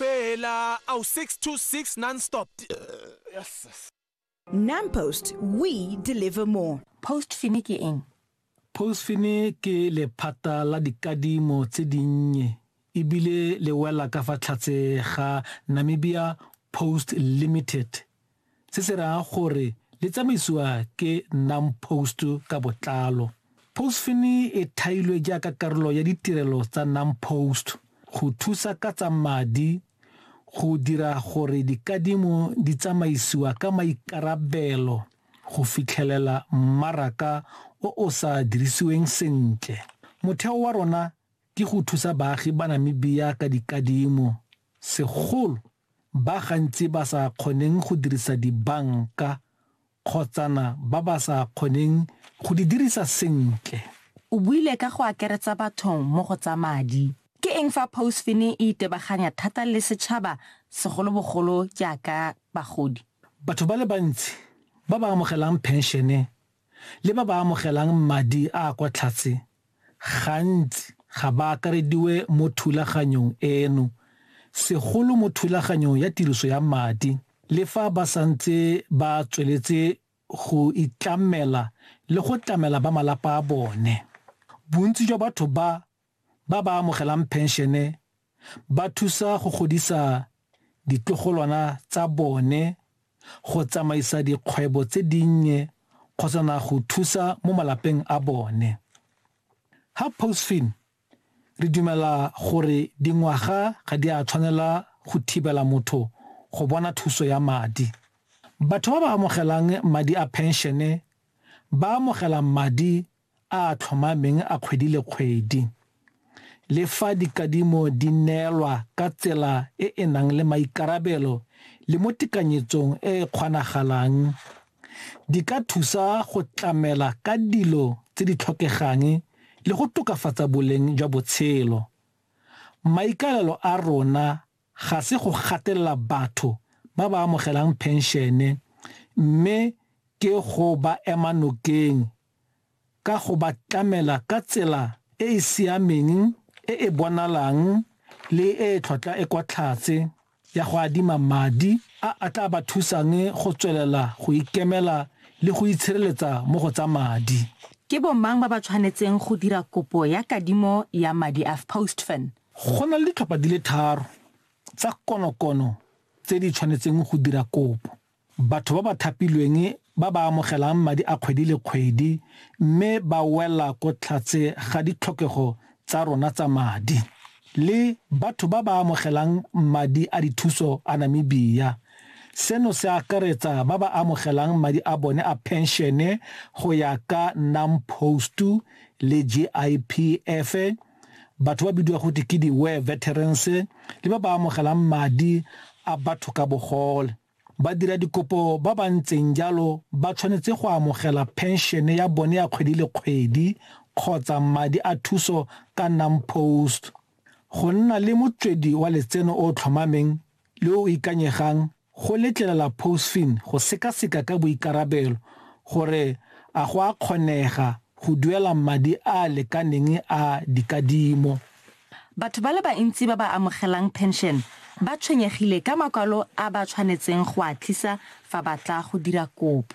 Bhela awu 626 non stop. Yes. Nampost we deliver more. Post fini ke eng? Post fini ke lephata la dikadimo tse dinnye ebile le wela ka fa tlhatse ga Namibia Post Limited. se se raya gore le tsamaisiwa ke NAMPOST ka botlalo. Postfin e thailwe jaaka karolo ya ditirelo tsa NAMPOST go thusa ka tsa madi go dira gore dikadimo di tsamaisiwa ka maikarabelo go fitlhelela mmaraka o o sa dirisiweng sentle. Motheo wa rona ke go thusa baagi ba Namibia ka dikadimo, segolo ba gantsi ba sa kgoneng go dirisa dibanka kgotsana ba ba sa kgoneng go di dirisa sentle. O buile ka go akeretsa batho mo go tsa madi. Ke eng fa Pousfini e itebaganya thata le setšhaba segolobogolo jaaka bagodi? Batho ba le bantsi ba ba amogelang phenšene le ba ba amogelang madi a a kwa tlhatse gantsi ga ba akarediwe mo thulaganyong eno, segolo mo thulaganyong ya tiriso ya madi, le fa ba santse ba tsweletse go itlamela le go tlamela ba malapa a bone. Bontsi jwa batho ba ba ba amogelang phenšene ba thusa go godisa ditlogolwana tsa bone, go tsamaisa dikgwebo tse dinnye kgotsa na go thusa mo malapeng a bone. Ha Postfin re dumela gore dingwaga ga di a tshwanela go thibela motho go bona thuso ya madi. Batho ba ba amogelang madi a phenšene ba amogela madi a a tlhomameng a kgwedi le kgwedi. Le fa dikadimo di neelwa ka tsela e e nang le maikarabelo le mo tekanyetsong e e kgonagalang, di ka thusa go tlamela ka dilo tse di tlhokegang le go tokafatsa boleng jwa botshelo. Maikaelelo a rona ga se go gatelela batho ba ba amogelang phenšene mme ke go ba ema nokeng ka go ba tlamela ka tsela e e siameng, e e bonalang le e e tlhotlha e kwa tlhatse ya go adima madi a a tla ba thusang go tswelela go ikemela le go itshireletsa mo go tsa madi. Ke bomang ba ba tshwanetseng go dira kopo ya kadimo ya madi a FPOSTFN? Go na le ditlhopha di le tharo tsa konokono tse di tshwanetseng go dira kopo. Batho ba ba thapilweng ba ba amogelang madi a kgwedi le kgwedi mme ba wela ko tlhatse ga ditlhokego tsa rona tsa madi, le batho ba ba amogelang madi a dithuso a Namibia. Seno se akaretsa ba ba amogelang madi a bone a phenšene go ya ka NAMPOST le GIPF, batho ba bidiwa gote ke di-war veterans le ba ba amogelang madi a batho ka bogole. Badiradikopo ba ba ntseng jalo ba tshwanetse go amogela phenšene ya bone ya kgwedi le kgwedi kgotsa madi a thuso ka NAMPOST. Go nna le motswedi wa letseno o o tlhomameng le o ikanyegang go letlelela POSFIN go sekaseka ka boikarabelo gore a go a kgonega go duela madi a a lekaneng a dikadimo. Batho ba le bantsi ba ba amogelang phenšene ba tshwenyegile ka makwalo a ba tshwanetseng go a tlisa fa ba tla go dira kopo.